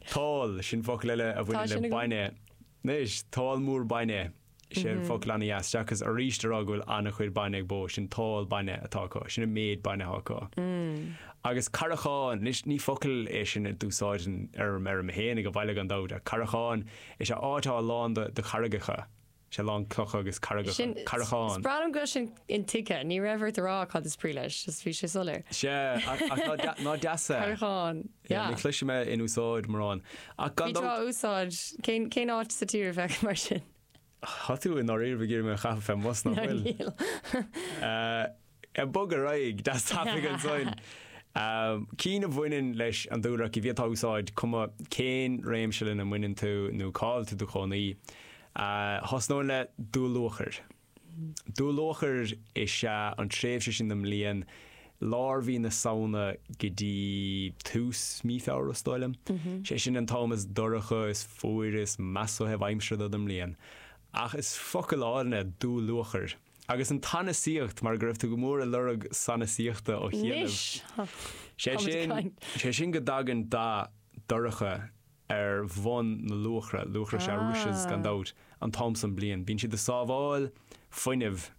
Tál, sin focal eile a bhaineann le bainne. Anois, tál mór bainne. Sea focal ana-dheas, seachas arís a rá go bhfuil ana-chuid bainne ag bó, sin tál bainne atá acu, sin an méid bainne atá acu. Agus carrachán, anois ní focal é sin a d'úsáidinn ar an fheirm fhéinig ag baile gan dabht, ach carrachán, is ea áit atá lán de, de charraigeacha, is ea lán clocha agus carraigeacha, carrachán. Sin, braithim go bhfuil sin intuigthe, ní raibh ort a rá cad is brí leis, just bhí sé soiléir. Sea, ach ná deas é? Carrachán. Yeah, ní chloisim é in úsáid mórán. Ach gan dabht. Bí á úsáid. Cén, cén áit sa tír a bheadh mar sin? Tá tú i ndáiríre, ag iarraidh mé a chaitheamh fén mbus ná fuil? Ná níl. Eh, bog ar aghaidh deas tapaidh ansan. Ehm, cinn a bhaineann leis an dúlra ach is féidir iad a úsáid, cuma cén réimse lena mbaineann tú nó cá bhfuil tú i do chónaí. Eh, thosnóinn le dúluachair. Dúluachair is ea an tréimhse sin den mbliain, lár mhí na Samhna go dtí tús mí Feabhra, is dóigh liom. Sé sin an t-am is dorcha, is fuaire, is measa ó thaobh aimsire den mbliain. Ach is focal álainn é dúluachair. Agus an tsanasaíocht, mar go raibh tú go mór ag lorg sanasaíochta ó chianaibh. Anois! Sé sin, sé sin go dtagann dath dorcha ar bhun na luachra. Luachra is ea rushes, gan dabht, an t-am san bliana. Bíonn siad ag sábháil fuinnimh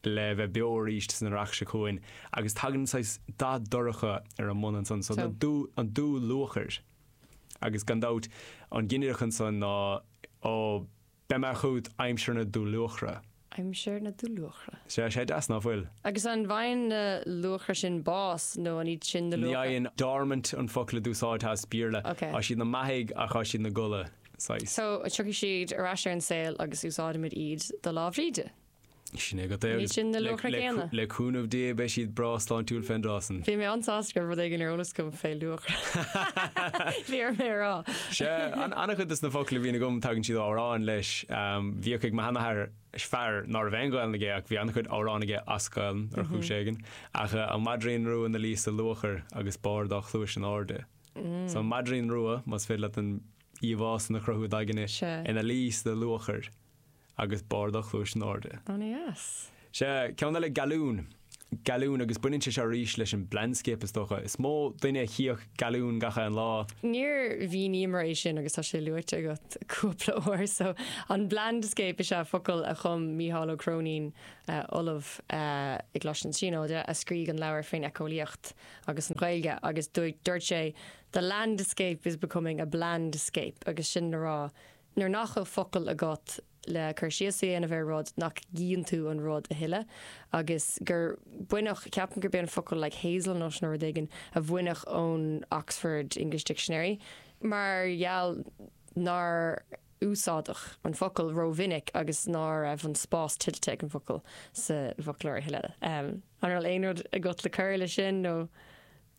le bheith beo arís san earrach seo chugainn. Agus tagann saghas dath dorcha ar an mbun ansan, so an dúluachair. Agus gan dabht, an ginideach ansan ná. Beidh mé chugat aimsir na dúluachra. aimsir na dúluachra. Sea, sé deas, ná fuil? Agus an bhfaigheann na luachra sin bás, nó an iad sin na luachra? Ní fhaigheann. Dormant an focal a d'úsáidfeá as Béarla. Ok. Tá siad ina mbeathaidh, ach tá siad ina gcodladh, saghas. So, tiocfaidh siad ar ais ar an saol agus úsáidfimid iad do Lá Bhríde? Sin é agat é. Ní hin na luachra céanna. Le cúnamh Dé beidh siad breá sláintiúil fén dtráth san. Bhí mé an-sásta go raibh rud éigin ar eolas agam fé luachra. Bhí orm é a rá. Sea, an-chuid de na focla a bhíonn agam tagann siad ó amhráin leis. Bhíodh ag mo sheanathair, fear ná raibh aon Ghaelainn aige ach bhí an-chuid amhrán aige as Gaelainn ar chúis éigin, ach An Maidrín Rua 'na luí sa luachair agus bárr dá chluais in airde. So An Maidrín Rua, más féidir leat an íomhá san a chruthú, i d'aigne, ina luí sa luachair. agus barr dá chluais in airde. Ó ní as. Sea, ceann eile gealún. Gealún, agus baineann sé seo arís leis an blandscape is dócha. Is mó duine a chífeadh gealún gach aon lá. Níor mhíníomar é sin agus tá sé luaite agat cúpla uair so an blandscape is ea focal a chum Mícheál Ó Cróinín, ollamh i gColáiste na Tríonóide, a scrígh an leabhar fén eiceolaíocht agus an Ghaeilge agus dúirt sé The landscape is becoming a blandscape agus sin le rá Nuair nach bhfuil focail agat le cur síos a dhéanamh ar rud, nach gcíonn tú an rud a thuilleadh? Agus gur baineadh, ceapaim gurb é an focal like hazel nut nó rud éigin a baineadh ón Oxford English Dictionary mar gheall nár úsáideadh an focal rómhinic agus ná raibh an spás tuillte ag an bhfocal sa bhfoclóir a thuilleadh. An raibh aon rud agat le cur leis sin nó?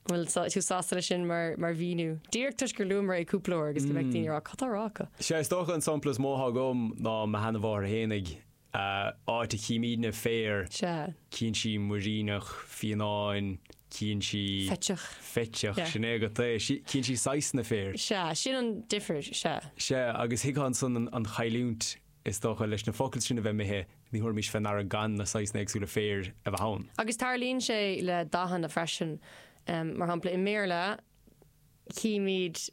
Bhfuil tú sásta leis sin mar mhíniú? Díreach toisc gur luamar é cúpla uair agus go mbeadh daoine ag rá 'cad tá a rá acu? Sea, is dócha an sampla is mó atá agam ná mo sheanmháthair héinig, áit a chímídne féar, Sea. cíonn sí muiríneach, fianáin, cíonn sí. Feiteach. feiteach, Yeah. sin é agat é, sí, cíonn sí saghsanna féir. Sea, sin an difir, sea. Sea, agus thuigfeá ansan an chailliúint. Is dócha, leis na focail sin a bheith imithe, ní thabharfaimis fé ndeara gan na saghsanna éagsúla féir a bheith ann. Agus tarlaíonn sé le dathanna freisin. Mar shampla, i mBéarla, chímid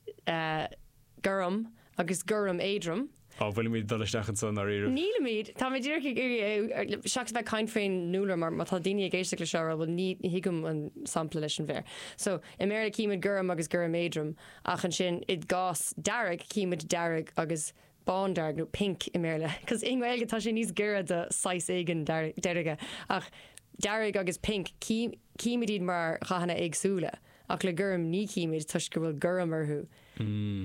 gorm agus gorm éadrom. Á, bhfuilimid ag dul isteach anso, i ndáiríribh? Nílimid! Táimid díreach ag iarraidh, seachas a bheith ag caint fén ndúlra, mar má tá daoine ag éisteacht leis seo a rá, bhuel, ní thuigim an sampla leis an bhféar. So, i mBéarla, chímid gorm agus gorm éadrom, ach ansin, i gcás dearg, chímid dearg agus bándearg nó pink i mBéarla, cos i nGaeilge tá sé níos giorra do saghas éigin deirge, ach dearg agus pink, címid iad mar dhathanna éagsúla, ach le gorm, ní chímid, toisc go bhfuil gorm orthu.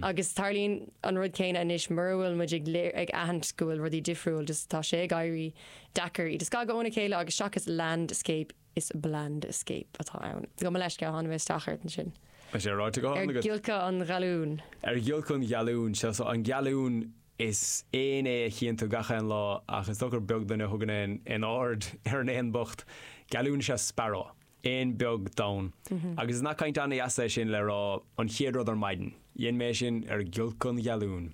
Agus tarlaíonn an rud céanna anois, mura bhfuil muid ag aithint go bhfuil rudaí difriúil, just tá sé ag éirí deacair iad a scagadh óna chéile, agus seachas landscape, Is 'blandscape' atá ann. Gabh mo leithscéal, tháinig mé isteach ort ansin. Tá sé ráite go hiomlán agat. Ar ghiolcadh an ghealúin. Ar ghiolcadh an ghealúin. Sea, so, an gealún, is éan é a chíonn tú gach aon lá, ach is dócha gur beag duine a thugann aon aird ar an éan bocht. Gealún is ea sparrow. Éan beag donn. Agus is nath cainte an-deas é sin le rá an chéad rud ar maidin. Dhein mé é sin ar ghiolcadh an ghealúin.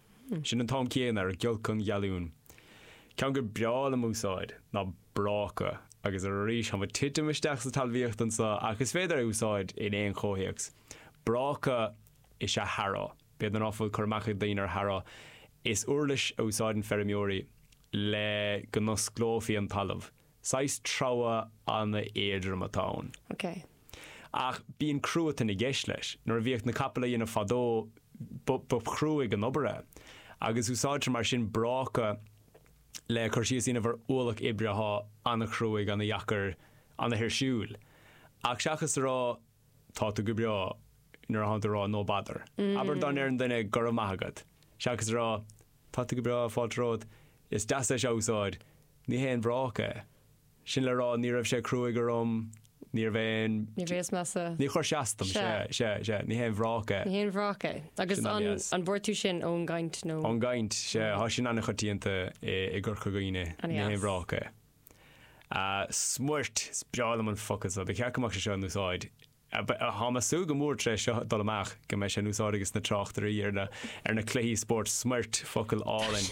Sin an t-am céanna ar ghiolc an gealún. Ceann gur breá liom a úsáid ná bráca, agus arís táim ag titim isteach sa talmhaíocht anseo ach is féidir é a úsáid in aon chomhthéacs. Bráca is ea harrow, b'fhéidir ná fuil cur amach ag daoine ar harrow. Is uirlis a úsáideann feirmeoirí le go n-osclófaí an talamh. Saghas treabhadh an-éadrom atá ann. Ok. Ach bíonn cruatan i gceist leis. Nuair a bhíodh na capaill á dhéanamh fadó, ba chruaidh an obair é. Agus úsáidtear mar sin bráca le cur síos a dhéanamh ar ualach oibre atá an-chruaidh, an-deacair, an-thuirsiúil. Ach seachas a rá Tá tú go breá, nuair atá tú ag rá No bother. Abair dá ndeireann duine Go raibh maith agat. Seachas a rá Tá tú go breá, fáilte romhat, is deas é seo a úsáid, Ní haon bhráca é. Sin le rá, ní raibh sé cruaidh orm, níorbh aon. Ní bhíos measa. Ní chuir sé as dom. Sea. Sea. Sea. Ní haon bhráca é. Ní haon bhráca é. Agus Sin an an, dheas. an bhfuair tú sin ón gcaint nó? Ón gcaint, sea. Tá sin an-choitianta i i gCorca Dhuibhne. An Ní haon dheas. bhráca é. Ah, smúirt! Is breá liom an focal seo. Ba cheart go mbeadh sé seo in úsáid. Ah, ba, tá mé ag súil go mór tar éis seo dul amach go mbeidh sé in úsáid ages na tráchtairí ar na, ar na cluichí spóirt, smúirt, focal álainn.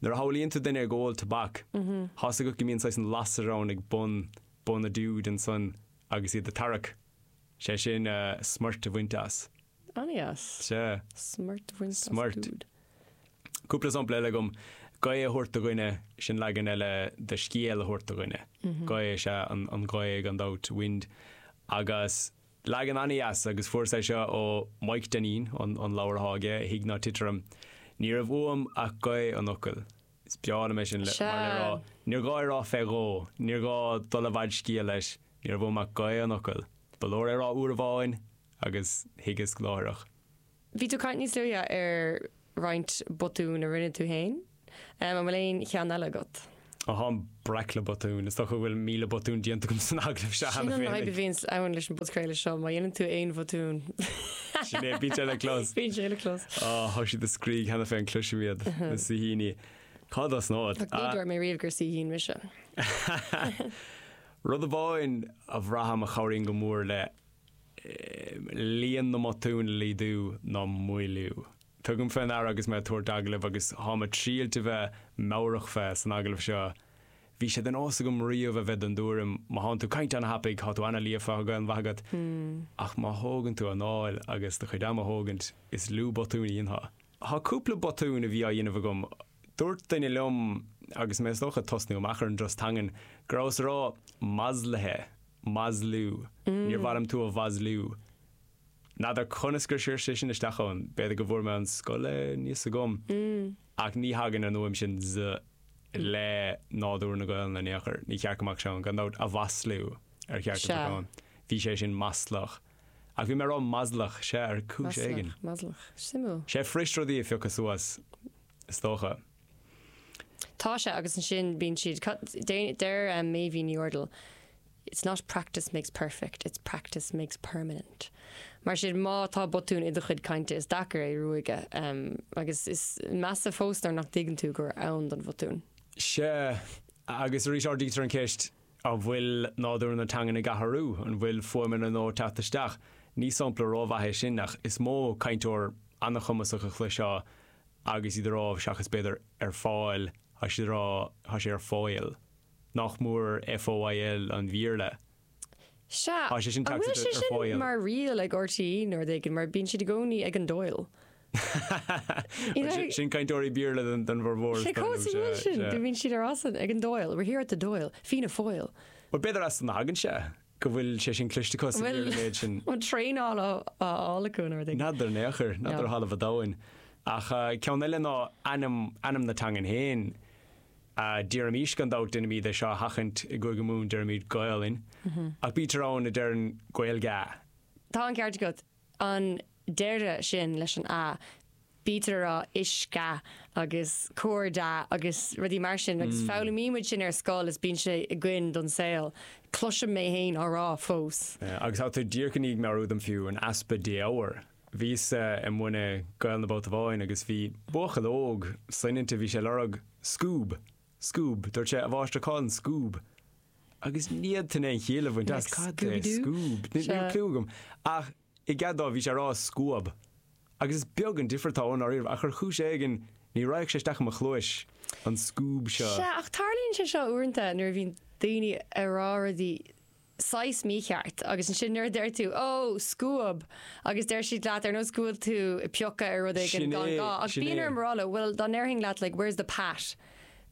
Nuair a shamhlaíonn tú duine ag ól tobac, tá's agat go mbíonn saghas an lasair ann ag bun, bun an dúid ansan agus iad a' tarrac, sé sin eh, smúirt a bhaint as. An-dheas. Sea. Smúirt a bhaint as Smúirt. dúid. Cúpla sampla eile agam, gaoth a thabhairt do dhuine, sin leagan eile de scéal a thabhairt do dhuine. Gaoth is ea an, an ghaoth gan dabht, wind, agus Leagan an-deas agus fuaireas é seo ó Mhaidhc Dainín, an leabhar atá aige, Thig ná Tit Orm. Ní raibh uaim ach gaoth an fhocail. Is breá liom é sin, mar Sea. le rá, níor ghá é rá fé dhó, níor ghá dul i bhfad scéil leis, ní raibh uaim ach gaoth an fhocail. Ba leor é rá uair amháin agus thuigeas láithreach. Bhí tú ag caint níos luaithe ar roinnt botún a rinne tú féin. An bhfuil aon cheann eile agat? Ó tháim breac le botúin. Is dócha go bhfuil míle botún déanta agam san agallamh seo cheana féin. Sin an fhadhb a bhíonns ann leis an bpodchraoladh seo, má dhéanann tú aon bhotún. Sin é, bíonn sé le clos. Bíonn sé le clos. Ó, tá siad ag scríobh cheana féin cluisim iad na saoithíní. Cá dos nód? Ní dúirt mé riamh gur saoithín mise. Rud amháin a bhraithim a chabhraíonn go mór le líon na mbotún a laghdú ná moilliú. Tugaim fé ndeara agus mé ag tabhairt agallaimh, agus táim ag triailt a bheith meabhrach fé san agallamh seo, bhí sé de nós agam riamh a bheith den dtuairim, má thánn tú ag caint ana-thapaidh, thá tú ana-líofa, thá Gaelainn mhaith agat, ach má thógann tú anáil agus do chuid ama a thógaint, is lú botúin a dhéanfá. Thá cúpla botún a bhí á dhéanamh agam. Dúirt duine liom, agus mé is dócha ag tosnú amach ar an dturas teangan, go rabhas ag rá 'maslaithe' Maslú. Níor mhaith liom tú a mhaslú. N'fheadar conas gur sciorr sé sin isteach ann. B'fhéidir go bhfuair mé ón scoil aníos agam. Ach ní thagann an fhuaim sin Z le nádúr na Gaolainne in aon chor. Ní ceart go mbeadh sé ann. Gan dabht, a mhaslú ar cheart go mbeadh ann. Bhí sé sin maslach. Ach bhí mé ag rá maslach, sea, ar chúis éigin. Maslach, maslach. Suimiúil. Sea, is fuirist rudaí a phiocadh suas. is dócha. Tá sé, agus ansin bíonn siad, cad, deir Meidhbhín Ní Úrdail, It's not practice makes perfect, it's practice makes permanent. Mar sin, má tá botún i do chuid cainte, is deacair é a ruaigeadh, agus is measa fós nuair nach dtuigeann tú gur ann don bhotún. Sea, agus arís ardaítear an cheist, an bhfuil nádúr na teangan ag athrú, an bhfuil fuaimeanna nua ag teacht isteach? Ní sampla ró-mhaith é sin, ach is mó cainteoir an-chumasach a chloisfeá agus iad ag rá, seachas b'fhéidir ar fáil, tá siad ag rá tá sé ar foil. Nach mór FOIL an Bhéarla? Sea. Tá sé sin An bhfuil sé sin mar riail ag RTÉ nó rud éigin, mar bíonn siad i gcónaí ag an Doyle? Sin cainteoirí Béarla don bhformhór. Sé cás an bhfuil sin, go mbíonn siad ag rá ag an Doyle, we're here at the Doyle, Fianna Foyle. Bhuel b'fhéidir as san a thagann sé. go bhfuil sé sin cloiste acu is bhfuil an méid sin an traenáil á fháil acu an rud N'fheadar in aon chor, n'fheadar ó thalamh an domhain. Ach ceann eile ná ainm, ainm na teangan féin. Déarfaimis gan dabht déanaimid é seo a sheachaint i gCúige Mumhan deirimid Gaolainn ach bítear ann a deireann Gaeilge. Tá an ceart agat. An deireadh sin leis an a, bítear ag rá uisce agus cairde agus rudaí mar sin agus foghlaimímid sin ar scoil is bíonn sé againn don saol, cloisim mé fhéin á rá fós. Agus tá tú díreach i ndiaidh meabhrú dom fiú, an easpa défhoghair. Bhíos-sa i mbun na Gaolainne babhta amháin agus bhí buachaill óg soineanta, bhí sé ag lorg scuab. Scoob, dúirt sé, a mháistir cá bhfuil an scoob? Agus ní fhéadfainn aon chiall a bhaint as cad é scoob, ní raibh cliú agam. Ach i gcead dó bhí sé ag rá scuab. Agus is beag an difear atá ann i ndáiríre ach ar chúis éigin ní raghadh sé isteach i mo chluais, an scoob seo. Sea, ach tarlaíonn sé seo uaireanta nuair a bhíonn daoine ag rá rudaí. saghas mícheart, agus ansin nuair a deir tú, Ó, scuab! agus deir siad leat, ar nós go bhfuil tú ag piocadh ar rud éigin gan gá, ach bíonn orm a rá leo, bhuel, dá ndéarfainn leat, like, where's the pat?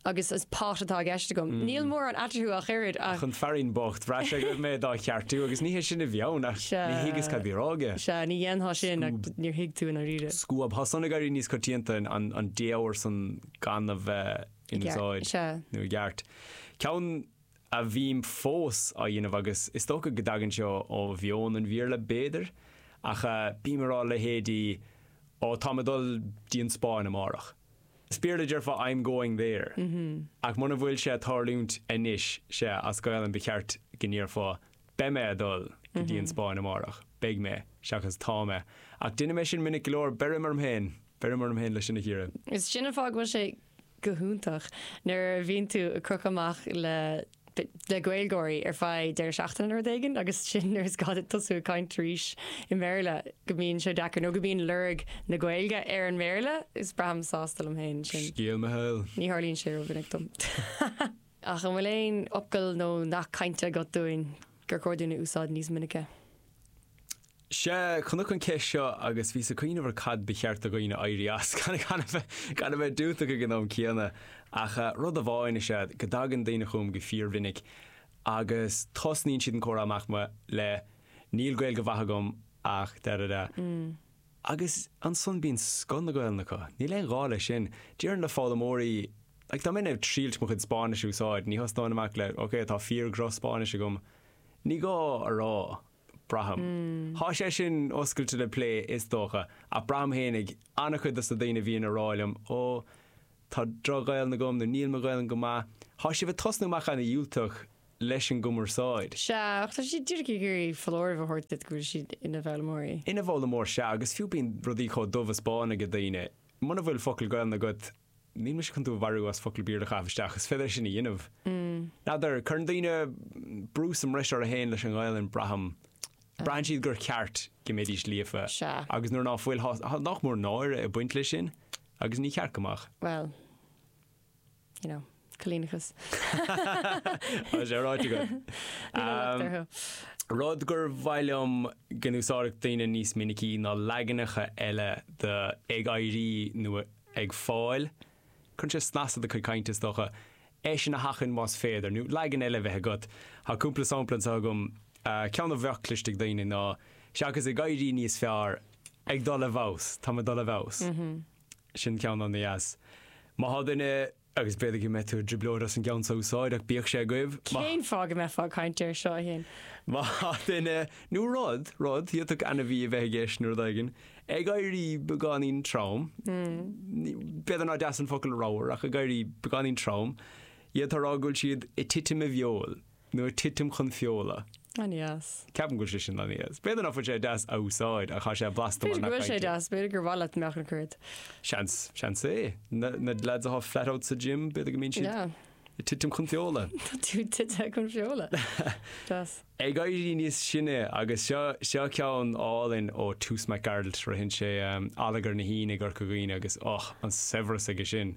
agus is pot atá i gceist agam, níl mórán eatarthu ach oiread, ach. Ach an fearín bocht, bhraith sé go raibh mé dá cheartú, agus ní hé sin a bhí ann, ach ní thuigeas cad a bhí á rá aige. Sea, ní dhéanfá sin, ach Scuab. níor thuig tú i ndáiríre. Scuab. Thá san ag éirí níos coitianta an défhoghar san gan a bheith in úsáid, nó i gceart. Ceann a bhím fós á dhéanamh agus is dócha go dtagann sé ó mheon an Bhéarla b'fhéidir ach bím ag rá leithéidí oh táim ag dul go dtí an Spáinn amárach. As Béarla déarfá I'm going there ach muna bhfuil sé ag tarlúint anois so as Gaolainn ba cheart go ndéarfá beidh mé ag dul go dtí an Spáinn amárach, beidh mé, seachas tá mé. Ach déanaim é sin minic go leor, beirim orm féin, beirim orm féin leis sin a chíoradh. Is sin an fáth go bhfuil sé go hiontach nuair a bhíonn tú ag crochadh amach le le Gaeilgeoirí ar feadh deireadh seachtaine nó rud éigin agus ansin nuair is gá duit tosú ag caint arís i mBéarla go mbíonn sé deacair nó go mbíonn lorg na Gaeilge ar an mBéarla. Is braithim sásta liom féin ansin. Scéal mo shaoil. Ní tharlaíonn sé rómhinic dom. Ach an bhfuil aon fhocal nó nath cainte agat dúinn gur chóir dúinn a úsáid níos minice? Sea, chonac an ceist seo agus bhíos ag cuimhneamh ar cad ba cheart do dhaoine éirí as gan a bheith diúltach ag an am céanna. Ach rud amháin is ea go dtagann daoine chugam go fíormhinic agus tosnaíonn siad an comhrá amach le Níl Gaeilge mhaith agam ach da da da. Agus ansan bíonn scoth na Gaolainne acu. Níl aon ghá leis sin. Déarfainn le foghlaimeoirí like dá mbeinn ag triailt mo chuid Spáinnis a úsáid, ní thosnóinn amach le Ok, tá fíor-dhroch-Spáinnis agam. Ní gá a rá, braithim. Tá sé sin oscailte le plé is dócha, ach braithim féinig an-chuid dos na daoine a bhíonn ag rá liom, Ó, tá droch-Ghaelainn agam, nó Níl mo Ghaelainn go maith. Tá sibh ag tosnú amach an-dhiúltach leis an gcumarsáid. Sea, ach tá siad díreach ag iarraidh foláireamh a thabhairt duit go bhfuil siad ina bhfoghlaimeoirí. Ina bhfoghlaimeoir, sea, agus fiú bíonn rudaí chomh dubh is bán aige daoine, muna bhfuil focal Gaelainn agat, Níl mise chun tú a mharú as focal Béarla a chaitheamh isteach, is féidir é sin a dhéanamh. N'fheadar, cuireann daoine brú sa mbreis orthu féin leis an nGaelainn, braithim. Braitheann siad gur cheart go mbeidís líofa, agus nuair ná fuil, tá nach mór náire ag baint leis sin, agus ní ceart go mbeadh. Bhuel, you know. Coilíneachas. Tá sé ráite agat. Níl an locht orthu. Rud gur mhaith liom go n-úsáidfeadh daoine níos minicí ná leaganacha eile de ag éirí nó ag fáil. Cuireann sé snas ar do chuid cainte, is dócha. É sin a sheachaint más féidir, nó leagan eile a bheith agat. Tá cúpla sampla anseo agam. Ceann a bheadh cliste ag daoine ná, seachas ag éirí níos fearr, ag dul i bhfeabhas, táim ag dul i bhfeabhas. Sin ceann an-deas. Má tá duine Agus b'fhéidir go mbeidh tú i dtrioblóid as an gceann seo a úsáid, ach bíodh sé agaibh. Má. Cén fáth go mbeifeá ag caint air seo, a Shéain? Má tá duine, nó rud, rud, d'fhéadfadh ainmhí a bheith i gceist, nó rud éigin, ag éirí beagáinín trom, ní, b'fhéidir nár deas an focal ramhar, ach ag éirí beagáinín trom, féadann tú a rá go bhfuil siad ag titim i bhfeoil. Nuair titim chun feola. An-dheas. Ceapaim go bhfuil sé sin an-dheas. B'fhéidir nach bhfuil sé deas a úsáid ach tá sé blasta mar B'fhéidir go bhfuil sé deas, b'fhéidir gur mhaith leat mbeadh an cuiread. Seans, seans é. Na na lads atá flat out sa gym, b'fhéidir go mbíonn siad Yeah. ag titim chun feola. Tá tú tite chun feola. Deas. Ag éirí níos sine agus seo seo ceann álainn ó Toose Mac Gearailt. Ritheann sé Allagar na hAoine i gCorca Dhuibhne agus och, an saibhreas aige sin.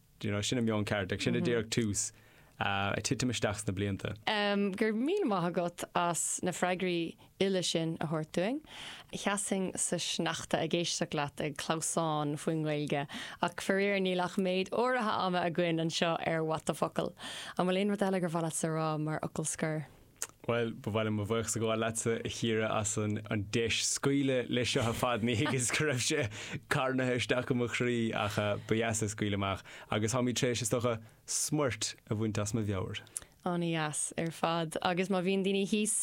do you know, sin an meon ceart, agus sin a déarfadh Toose, ag titim isteach sna blianta. Go raibh míle maith agat as na freagraí uile sin a thabhairt dúinn. Sheasfainn sa sneachta ag éisteacht leat ag clamhsán faoin nGaeilge, ach faraor níl ach méid áirithe ama againn anseo ar What the Focal! An bhfuil aon rud eile gur mhaith leatsa a rá mar fhocal scoir? Bhuel, ba mhaith liom mo bhuíochas a ghabháil leatsa, a Chiara, as an deis scaoileadh leis seo ar fad. Ní thuigeas go raibh sé carnaithe isteach i mo chroí, ach ba dheas é scaoileadh amach, agus táimid tar éis, is dócha, smúit a bhaint as mo mheabhair. Ana-dheas ar fad. Agus má bhíonn daoine thíos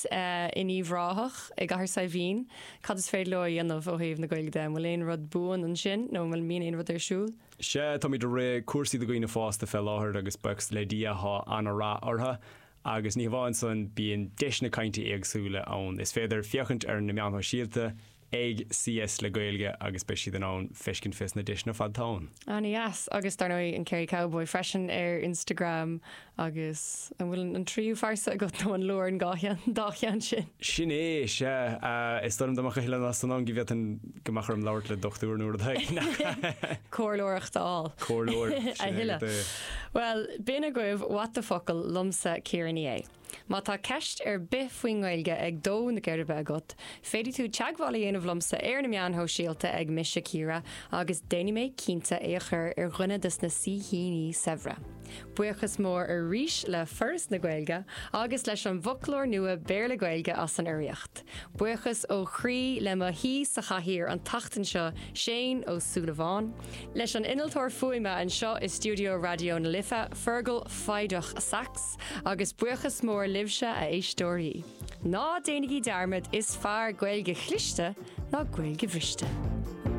in Uíbh Ráthach, i gCathair Saidhbhín, cad is féidir leo a dhéanamh ó thaobh na Gaeilge de? An bhfuil aon rud buan ansin, nó an mbíonn aon rud ar siúl? Sea, táimid ag rith cúrsaí do dhaoine fásta fé láthair, agus buíochas le Dia, tá ana-rath orthu. Agus ní hamháin san, bíonn deiseanna cainte éagsúla ann. Is féidir féachaint ar na meáin shóisialta ag CS le Gaeilge agus beidh siad in ann feiscint fés na deiseanna ar fad atá ann. Ana-dheas. Agus dar ndóigh an Kerry Cowboy freisin ar Instagram agus an bhfuil an tríú phearsa agat nó an leor an dhá cheann sin? Sin é, sea. Is dóigh liom dá mbeadh a thuilleadh ná san ann go bhféadfainn go mbeadh orm labhairt le dochtúir nó rud éigin. Comhairleoireacht a fháil. Comhairleoir. A thuilleadh. Bhuel, b'in agaibh What the Focal liomsa, Ciara Ní É. Má tá ceist ar bith faoin nGaeilge ag dó na geirbe agat, féadfaidh tú teagmháil a dhéanamh liomsa ar na meáin shóisialta ag Mise Ciara agus déanfaidh mé cinnte é a chur ar dhuine dos na saoithíní saibhre. Buíochas mór arís le Foras na Gaeilge agus leis an bhfoclóir nua Béarla-Gaeilge as an urraíocht. Buíochas ó chroí le mo shaoi sa chathaoir an tseachtain seo, Séaghan Ó Súilleabháin, leis an innealtóir fuaime anseo i stiúideo Raidió na Life, Fearghal Foighdeach Saxe, agus buíochas mór libhse, a éisteoirí. Ná déanaigí dearmad, is fearr Gaeilge chliste ná Gaeilge bhriste!